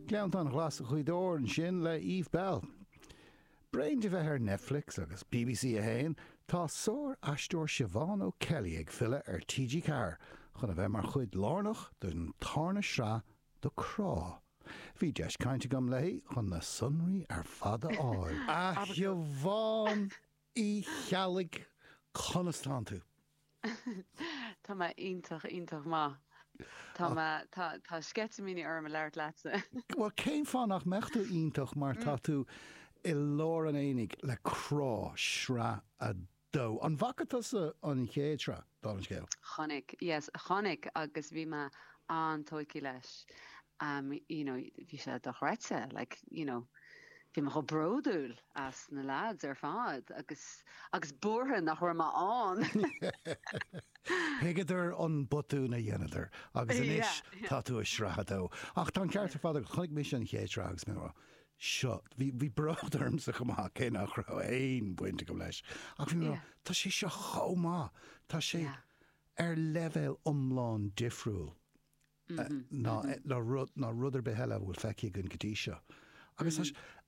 Gleanntáin Ghlasa Ghaoth Dobhair ansin le Eve Belle. Tar éis di a bheith ar Netflix agus bbc 1, tá sár aisteoir Siobhán O'Kelly ag filleadh ar TG4 chun a bheith mar chuid lárnach den tarna sraith de Crá. Bhí deis caint agam léi chun na sonraí ar fad a fháil. A Shiobhán! Uí Cheallaigh, conas tánn tú? Tá mé iontach, iontach maith. Tá mé, tá, tá sceitimíní orm a labhairt leatsa. Bhuel, cén fáth nach mbeadh tú iontach mar tá tú i lár an aonaigh le Crá, sraith a dó. An bhfaca tusa an chéad sraith, dála an scéil? Chonaic, yes, chonaic agus bhí mé an-tóigthe leis. Umm you know bhí sé dochreidte like you know bhí mé chomh bródúil as na lads ar fad agus agus buartha nach raibh mé ann. Thuigeadar an botún a dheineadar agus anois tá tú i sraith 2. Ach tá an ceart ar fad agat, chonaic mise an chéad sraith agus mé mar seo, bhí bhí bród ormsa chomh maith cé nach raibh aon bhaint agam leis ach bhí mé mar tá sé seo chomh maith, tá sé ar leibhéal iomlán difriúil. ná rud ar bith eile a bhfuil feicthe againn go dtí seo. Agus tá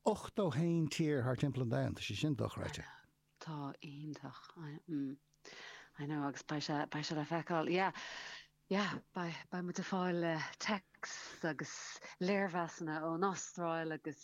81 tír thar timpeall an domhain, tá sé sin dochreidte. Tá, iontach. I know, agus beidh sé le feiceáil. Yeah, yeah, beidh muid ag fáil texts agus léirmheasanna ón Astráil agus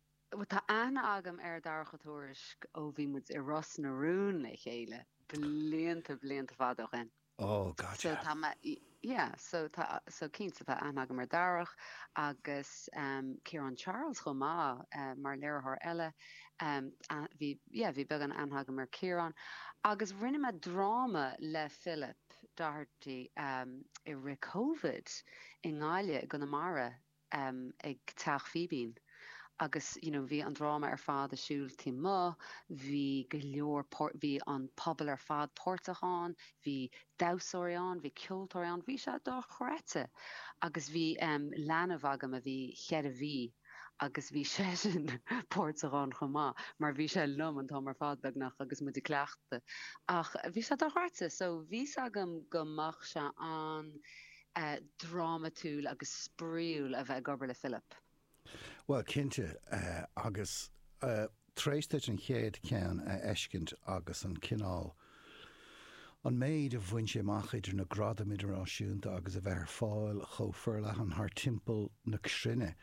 Tá aithne agam ar Dharach Ó Tuairisg ó bhí muid i Ros na Rún le chéile blianta, blianta fada ó shin. Ó, gotcha. So, tá mé, yeah, so, tá, so, cinnte, tá aithne agam ar Dharach agus Ciarán Charles chomh maith mar léiritheoir eile. Bhí, yeah, bhí beagán aithne agam ar Chiarán agus rinne mé dráma le Philip Doherty i rith Covid i nGaillimh, i gConamara. ag Teach Fíbín agus you know bhí an dráma ar fad ar siúl taobh amuigh, bhí go leor páirt, bhí an pobal ar fad páirteach ann, bhí damhsóirí ann, bhí ceoltóirí ann, bhí sé dochreidte agus bhí em leanbh agam a bhí cheithre mhí agus bhí seisean páirteach ann chomh maith mar bhí sé liom an t-am ar fad beagnach agus muid ag cleachtadh ach bhí sé dochreidte so bhí 's agam go mbeadh sé an- drámatúil agus spraoiúil a bheith ag obair le Philip. Bhuel cinnte agus tar éis duit an chéad ceann a fheiscint agus an cineál, an méid a bhain sé amach idir na gradaim idirnáisiúnta agus a bheith ar fáil chomh forleathan thar timpeall na cruinne,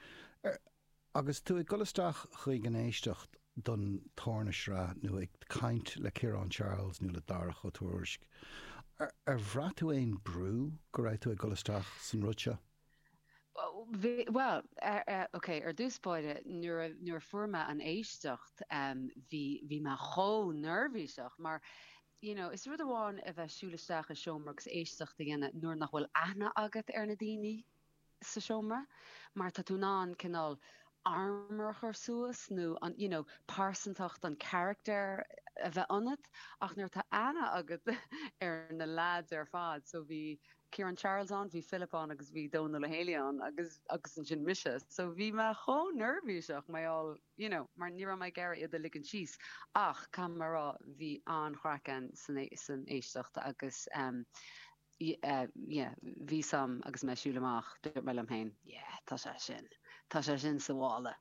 Agus tú ag dul isteach chuig an éisteacht don tarna sraith nó ag caint le Ciarán Charles nó le Darach Ó Tuairisg, ar bhraith tú aon brú go raibh tú ag dul isteach san rud seo? Bhuel, ok, ar dtús báire nuair a fuair mé an éisteacht bhí mé chomh neirbhíseach mar you know is rud amháin a bheith siúl isteach i seomra agus éisteacht a dhéanamh nuair nach bhfuil aithne agat ar na daoine, sa seomra mar tá tú in ann cineál armour a chur suas nó an you know pearsantacht an character a bheith ionat ach nuair atá aithne agat ar na lads ar fad so bhí Ciarán Charles ann, bhí Philip ann agus bhí Dónall Ó Héalaí ann agus agus ansin mise so bhí mé chomh neirbhíseach mar gheall you know mar ní raibh mé ag iarraidh iad a ligint síos ach caithfidh mé a rá bhí an-chraic ann san san éisteacht agus ehm yeah, bhí a fhios agam agus mé ag siúl amach, dúirt mé liom féin, yeah, tá sé sin, tá sé sin sa mhála.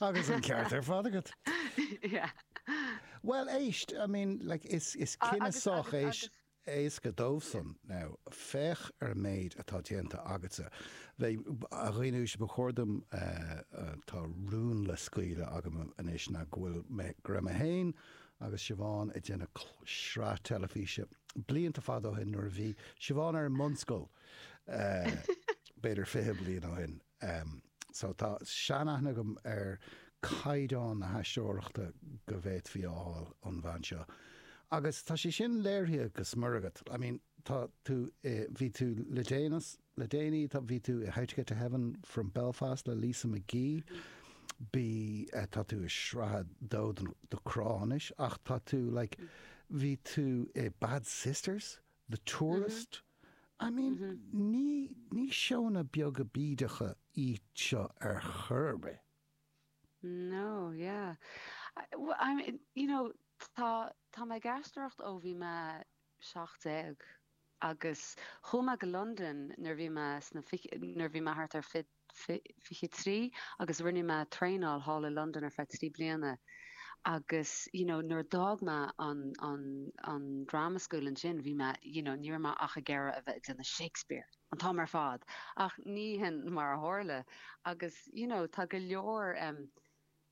Agus an ceart ar fad agat. Yeah. Bhuel, éist, I mean, like, is, is cinneadh sách éis, éasca dóibhsean. Now, féach ar an méid atá déanta agatsa. Bhuel, a dhaoine uaisle, ba chóir dom, eh, tá rún le scaoileadh agam anois ná go bhfuil mé, go raibh mé féin agus Siobhán ag déanamh sraith teilifíse blianta fada ó shin nuair a bhí Siobhán ar an mbunscoil b'fhéidir fiche bliain ó shin. So tá sean-aithne agam ar caighdeán na haisteoireachta go bhféadfaí a fháil ón bhean seo. Agus tá sé sin léirithe go smior agat. I mean tá tú i, bhí tú le déanaí, Le déanaí tá bhí tú i How to Get to Heaven from Belfast le Lisa McGee. Bhí tá tú i sraith a dó do Crá anois ach tá tú like bhí tú i Bad Sisters, The Tourist. I mean ní ní seónna beaga bídeacha iad seo ar chor ar bith. No yeah. Well I mean you know tá tá mé ag aisteoireacht ó bhí mé seacht déag agus chuaigh mé go Londain nuair bhí mé sna nuair bhí mé thart ar fiche trí agus rinne mé traenáil thall i Londain ar feadh trí bliana agus you know nuair a d'fhág mé an an an drama school ansin bhí mé you know ní raibh mé ach ag iarraidh a bheith ag déanamh Shakespeare an t-am ar fad ach ní hin mar a tharla agus you know tá go leor um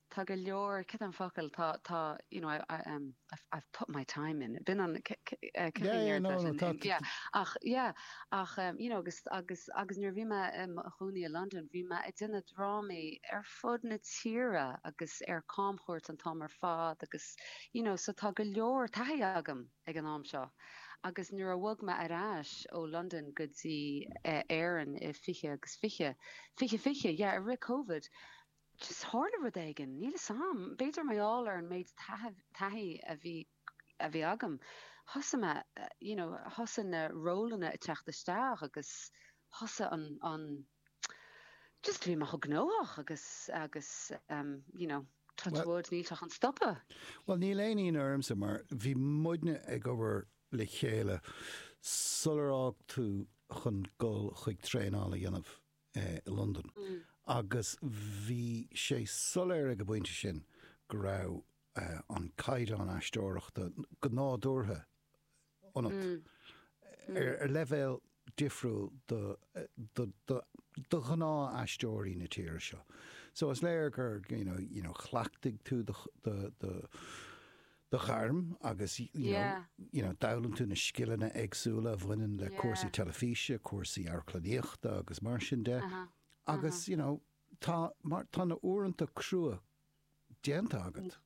Tá go leor, cad é an focal, tá, tá, you know, I, I, um, I've, I've put my time in. B'in an, c, c, eh, cad Yeah, é yeah, an no, no, freisin? tá, Um, tá, yeah, ach, yeah, ach, um, you know, agus, agus, agus nuair a bhí mé i mo chónaí i Londain, bhí mé ag déanamh drámaí ar fud na tíre agus ar camchuairt an t-am ar fad agus, you know, so tá go leor taithí agam ag an am seo. Agus nuair a bhog mé ar ais ó Londain go dtí, eh, Éirinn i 20 agus 20, 20, 20, yeah, i rith Covid, just tharla rud éigin, níl 'fhios a'm, b'fhéidir mar gheall ar an méid taithí a bhí, a bhí agam, thosaigh mé you know thosaigh na rólanna ag teacht isteach agus thosaigh an, an, just bhí mé chomh gnóthach agus, agus ehm you know touch wood níl sé chun stopadh. Bhuel níl aon ionadh ormsa mar bhí muidne ag obair le chéile sular fhág tú chun dul chuig traenáil a dhéanamh. i Londain agus bhí sé soiléir ag an bpointe sin go raibh an caighdeán aisteoireachta go nádúrtha ionat, ar leibhéal difriúil do ghnáth aisteoirí na tíre seo. So is léir gur, you know, chleachtaigh tú do ghairm agus you know Yeah. you know d'fhoghlaim tú na scileanna éagsúla a bhaineann le Yeah. cúrsaí teilifíse, cúrsaí amharclannaíochta agus mar sin de. Uh-huh. Agus you know tá mar tá na uaireanta crua déanta agat.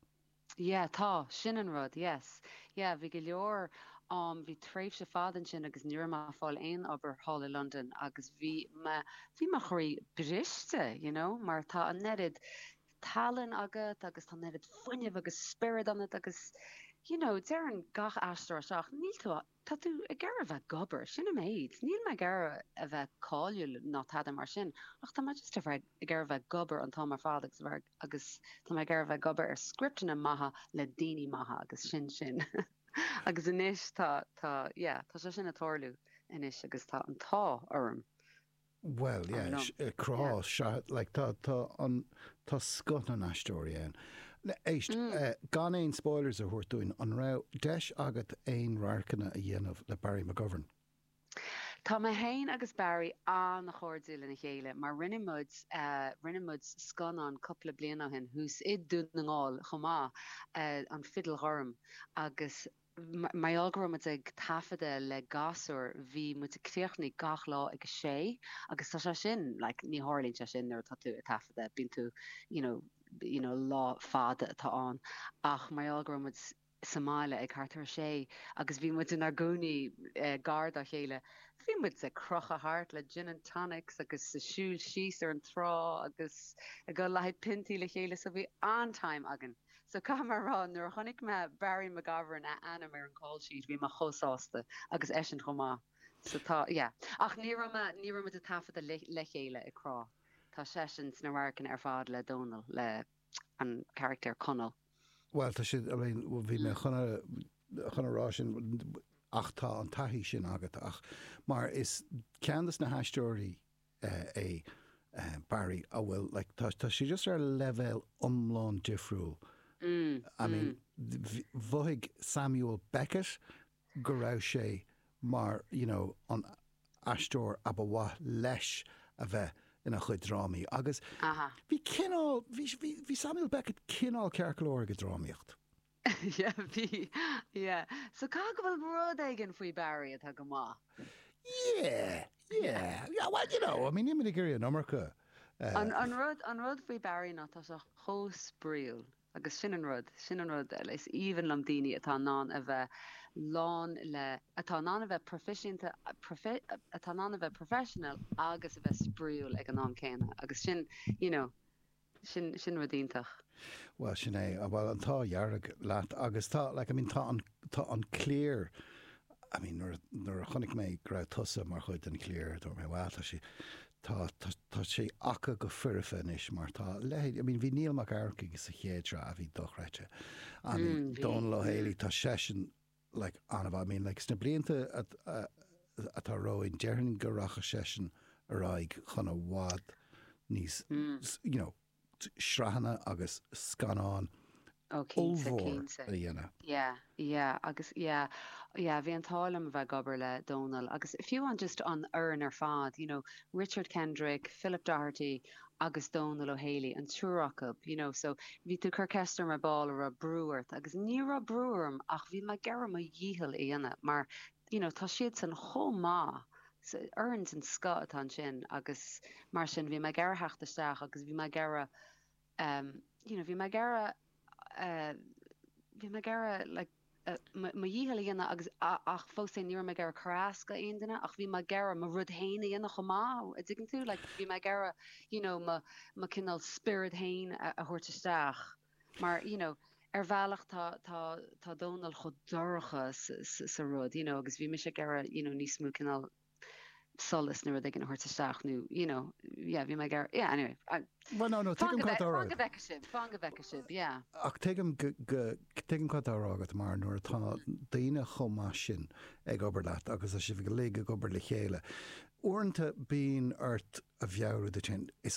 Yeah, tá sin an rud, yes. Yeah, bhí go leor um, bhí tréimhse fada ansin agus ní raibh mé ag fáil aon obair thall i Londain agus bhí mé bhí mo chroí briste, you know, mar tá an oiread tallann agat agus tá an oiread fuinnimh agus spiorad ionat agus you know deireann gach aisteoir é seo níl tú tá tú ag iarraidh a bheith ag obair sin an méid níl mé ag iarraidh a bheith cáiliúil ná tada mar sin ach tá mé just a bheith ag iarraidh a bheith ag obair an t-am ar fad agus a bheith agus tá mé ag iarraidh a bheith ag obair ar scripteanna maithe le daoine maithe agus sin sin agus anois tá tá yeah tá sé sin ag tarlú anois agus tá an t-ádh orm Bhuel, yeah, Coming up. eh, Crá, Yeah. sea, like, tá, tá an, tá scoth na n-aisteoirí ann. Na, éist, eh, gan aon spoilers a thabhairt dúinn, an raibh deis agat aon radharcanna a dhéanamh le Barry McGovern? Tá mé féin agus Barry an-chairdiúil lena chéile mar rinne muid, eh, rinne muid scannán cúpla bliain ó shin thuas i Dún na nGall chomh maith, eh, An Fidil Ghorm, agus Mar gheall go raibh muid ag taifeadadh le gasúir bhí muid ag críochnaigh gach lá ag a sé agus tá sé sin like ní tharlaíonn sé sin nuair atá tú ag taifeadadh bíonn tú you know you know lá fada atá ann ach mar gheall go raibh muid sa mbaile ag thart ar a sé agus bhí muid inár gcónaí eh, gar dá chéile bhí muid ag crochadh thart le gin and tonics agus ag siúl síos ar an trá agus ag goil le haghaidh piontaí le chéile so bhí an-time againn. So caithfidh mé a rá nuair a chonaic mé Barry McGovern a ainm ar an call sheet bhí mé chomh sásta agus eisean chomh maith. So tá yeah. Ach ní raibh mé ní raibh muid ag taifeadadh le chéile i gCrá. Tá seisean sna radharcanna ar fad le Dónal le an carachtar Conall. Bhuel tá siad I mean bhí mé chun a chun a rá sin ach tá an taithí sin agat ach mar is ceann dos na haisteoirí é Barry a bhfuil like tá sé just ar leibhéal iomlán difriúil I mean mhothaigh Samuel Beckett go raibh sé mar you know an aisteoir ab a mhaith leis a bheith ina chuid drámaí agus bhí cineál bhí Samuel Beckett cineál ceart go leor ag an drámaíocht. Yeah, bhí, yeah. So caithfidh go bhfuil rud éigin faoi Barry atá go maith. Yeah, yeah. Yeah, well, you know, I mean, níl mé ag iarraidh an iomarca. An, an rud, an rud faoi Barry ná tá sé chomh spraíúil. Agus sin an rud, sin an rud, is aoibhinn liom daoine atá in ann a bheith lán le, atá in ann a bheith proifisiúnta, profi, atá in ann a bheith professional agus a bheith spraíúil ag an am céanna. Agus sin, you know, Sin sin rud iontach. Bhuel sin é. Bhuel an t-ádh dhearg leat agus tá like I mean tá an tá an cliar I mean nuair nuair a chonaic mé go raibh tusa mar chuid den chliar dúirt mé wow tá sí tá tá sí aca go foirfe anois mar tá a leithéid I mean bhí Niall Mac Eachmharcaigh sa chéad sraith a bhí dochreidte I mean Dónal Ó hÉalaí tá seisean like, an-mhaith. I mean, like, sna blianta atá romhainn, déarfainn go rachaidh seisean ar aghaidh chun i bhfad níos, you know, sraitheanna agus scannáin ollmhór a dhéanamh. Yeah, yeah, agus yeah, yeah, bhí an t-ádh liom a bheith ag obair le Dónal agus fiú an just an fhoireann ar fad, you know, Richard Kendrick, Philip Doherty, agus Dónal Ó Héalaí, an triúr acu, you know so bhí tú ag cur ceist orm ar ball an raibh brú ort agus ní raibh brú orm ach bhí mé ag iarraidh mo dhícheall a dhéanamh mar you know tá siadsan chomh maith so fhoireann den scoth atá ansin agus mar sin bhí mé ag iarraidh theacht isteach agus bhí mé ag iarraidh um, you know bhí mé ag iarraidh bhí mé ag iarraidh like mo dhícheall a dhéanamh agus ach fós féin ní raibh mé ag iarraidh cur as d'aon duine ach bhí mé ag iarraidh mo rud féin a dhéanamh chomh maith a dtuigeann tú like bhí mé ag iarraidh you know mo mo cineál spiorad féin a thabhairt isteach mar you know ar bhealach tá tá tá Dónal chomh dorcha sa rud you know agus bhí mise ag iarraidh you know níos mó cineál solas nó rud éigin a thabhairt isteach nó you know yeah bhí mé ag yeah anyway I Well no no tuigim cad atá á rá agat. Fág a bheith sibh yeah. Ach tuigim tuigim cad atá á rá agat mar nuair atá daoine chomh maith sin ag obair leat agus tá sibh uilig ag obair le chéile uaireanta bíonn ort a mheabhrú duit féin is